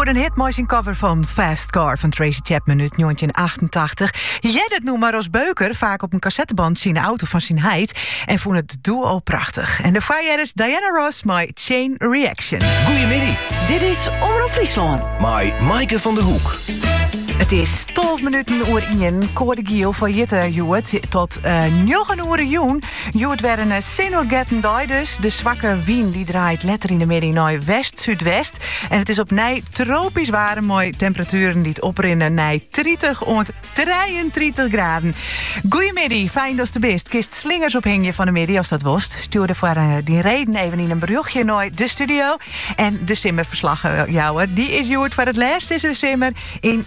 Oer in hit mei syn cover fan Fast Car fan Tracy Chapman út 1988 hearde it nûmer as beuker faak op in kassettebantsje yn 'e auto fan syn heit en fûn it doe al prachtich. En dêrfoar heardest Diana Ross mei Chain Reaction. Goeiemiddei. Dit is Omrop Fryslân. Mei Maaike van der Hoek. It is 12 minuten oer 1. Koade giel foar hjitte hjoed oant uh, eh, 9 oere jûn. Hjoed wer in eh, sinoergetten dei dus. De swakke wyn dy draait letter yn de middei nei west-súdwest. En it is opnij tropysk waarm mei temperaturen dy't oprinne nei 30 oant 33 graden. Goeiemiddei, fijn datst der bist. Kinst slingers ophingje fan 'e middei ast dat wolst. Stjoer dêrfoar eh, dyn reden even yn in berjochtsje nei de studio. En de simmerferslach eh, jouwer, dy is hjoed foar it lêst dizze simmer yn